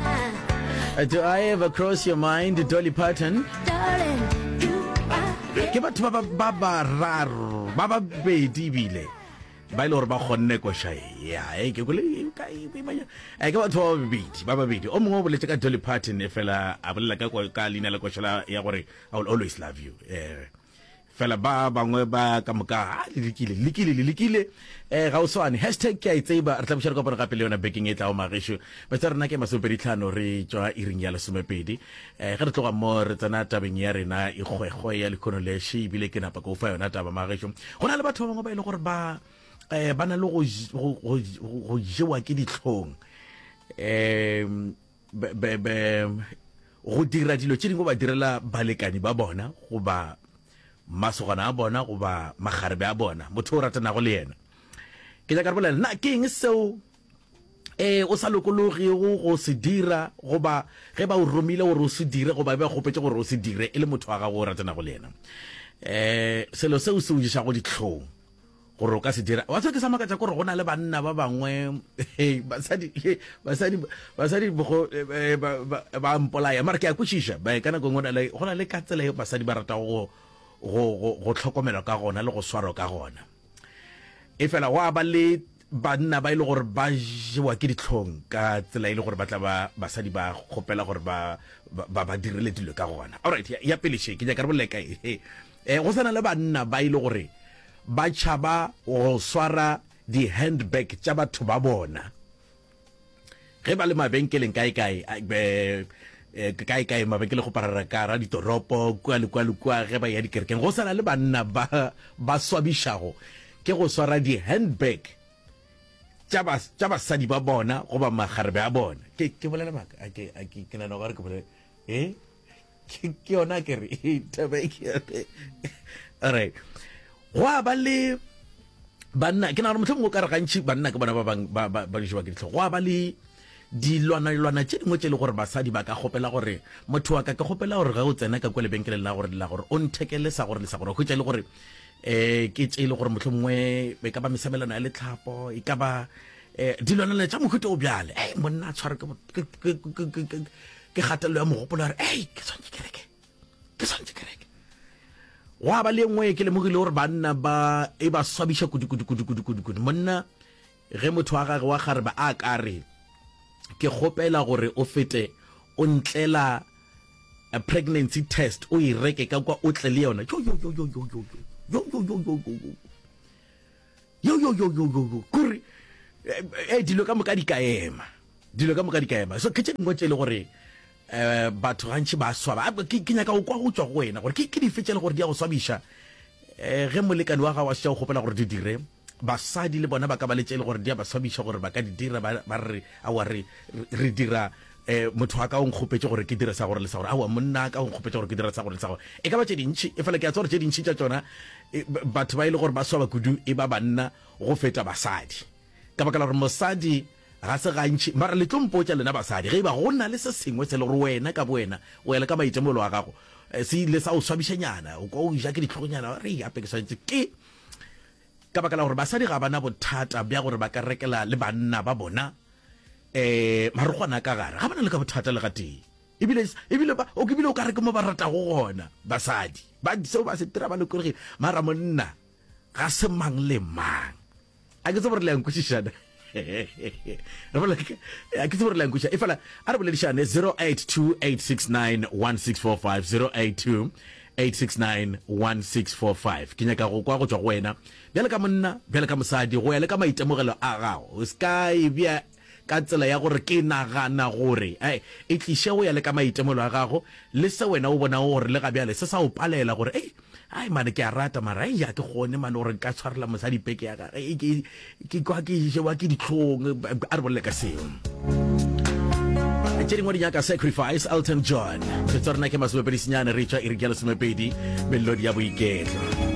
Uh, do I ever cross your mind, Dolly Parton? Darling, you are... Ke batho ba ba ba raro, ba ba bedi bile. ba ile gore ba kgonne koša yae ke kole e ka e ke batho ba babedi ba babedi o mongwe o boletse ka dolly parton e fela a bolela ka leina la koša ya gore i will always love you um Fela ba bangwe ba ka moka le lekile lekile le lekile um ga o swane hashtag ke a e tseba re tla buša re kopana gape le yona bekeng e tlago magešu bese rena ke masomepedi tlhano re tšwa iring ya lesomepedi um ge re tloga mo re tsena tabeng ya rena e kgwekgwe ya lekhono le še ebile ke napa ke o fa yona taba magešu go na le batho ba bangwe ba e le gore ba um ba na le go jewa ke ditlhong um be, be, be, go dira dilo tše dingwe ba direla balekani ba bona goba masogana a bona goba magarebe a bona motho o ratanago le yena ke nyaka re bolela na ke eng seo eh o sa lokologego go se dira goba ge ba o romile gore o se dire goba ba kgopetse gore o se dire e le motho wa gago o ratanago le yena eh selo seo se o dišago ditlhong gore o ka se dira wa tswa ke sa makatsa gore go na le banna ba bangwe basadi basadi basadi bogo eh, ba mpolaya mara ke a kwešiša ba ka nako e ngwe go na le ka tsela e basadi ba rata go go tlhokomelwa ka gona le go swaro ka gona e fela wa ba le banna ba ile e gore ba jewa ke ditlhong ka tsela e le gore ba tla ba basadi ba kgopela gore ba ba ba direle dilo ka gona alright ya pele she ke nyaka re boleka e E, go sa na le banna ba e le gore ba tšhaba go swara di-handbag tša batho ba bona ge ba le mabenkeleng kae-kae eh, kae-kae mabenkele go parara ka ra ditoropo kua le kua le kua ge ba ya dikerekeng go sa na le banna ba ba swabišago ke go swara di-handbag tša bas- tša basadi ba bona goba magarebe a bona ke ke bolela maaka a ke a ke ke nana gore ke bolela e ke yona ke re alright gwa ba le banna ke nagana motlho mongwe o ka re gantši banna ke bona ba bang ba jewa ke ditlhogo gwa ba le dilwana-lwana tše dingwe tše e le gore basadi ba ka kgopela gore motho wa ka ke kgopela gore ge o tsena ka kwa lebenkeleng la gore la gore o nthekele sa gore le sa gore hwetša e le gore um ke tše e le gore motlho mongwe e ka ba mesabelano ya letlhapo e ka ba um dilwanalwana tša mohuta o bjale e monna a tshware ke kgatelelo ya mogopolo ya gore ei ke tshwanetse ke reke ke tshwanetse ke reke gwa ba le e nngwe ke lemogile gore banna ba e ba swabiša kudikudikudikudikudikudu monna ge motho wa gage wa gare ba a ka re ke kgopela gore o fete o ntlela a pregnancy test o e reke ka kwa o tle le yona yo yo yo yo yo kore eh, eh, dilo ka moka di ka ema dilo ka moka di ka ema so ke tše dingwe tše e le gore eh batho gantši ba swaba Ah, ke ke nyaka go kwa go tswa go wena gore ke ke dife tše e le gore di ya go swabiša eh ge molekane wa gago a šetša go kgopela gore di dire basadi le bona ba ka ba le tše e le gore di ya ba swabiša gore ba ka di dira ba ba re a wa re re dira E, motho wa ka o nkgopetše gore ke dire sa gore le sa gore. Aowa, monna wa ka o nkgopetše gore ke dire sa gore le sa gore. E ka ba tše dintši, efela ke a tseba gore tše dintši tša tšona e, batho ba e le gore ba swaba kudu e ba banna go feta basadi, ka baka la gore mosadi ga se gantši. Mara le tlo mpotša lena basadi, ge e ba go na le se sengwe se le gore wena ka bowena, go ya le ka maitemogelo a gago, e, se ile sa o swabišanyana, o kwa o ja ke ditlhogonyana, re gape ke swanetše ke Ka baka la gore basadi ga ba na bothata bja gore ba ka rekela le banna ba bona um marokgwana a ka gare, ga ba na le ka bothata le gatee. Ebile, ebile, ba, o, ebile o ka re ke mo ba ratago gona. Basadi ba seo ba se dira ba lokologile, mara monna ga se mang le mang. A ke tsebe gore le a nkwešišana. a ke tsebo re lankuša e fela a re boledišane 082 869 1645 082 8691645 ke nyaka go kwa go tswa go wena bjale ka monna bjale ka mosadi go ya le ka maitemogelo a gago o ska e bja ka tsela ya gore ke nagana gore e e tliše go ya le ka maitemogelo a gago le se wena o bonago gore le ga bjale se sa o palela gore ei Ai mane ke a rata mara ai ya ke gone mane gore nka tshwarela mosadi peke ya gage e ke ke kwa ke jewa ke ditlhong a re bolele ka seo tše dingwe di nyaka sacrifice elton john se tsa rena ke masomepedi senyane re tšwa e re ke ya lesomepedi melodi ya boiketlo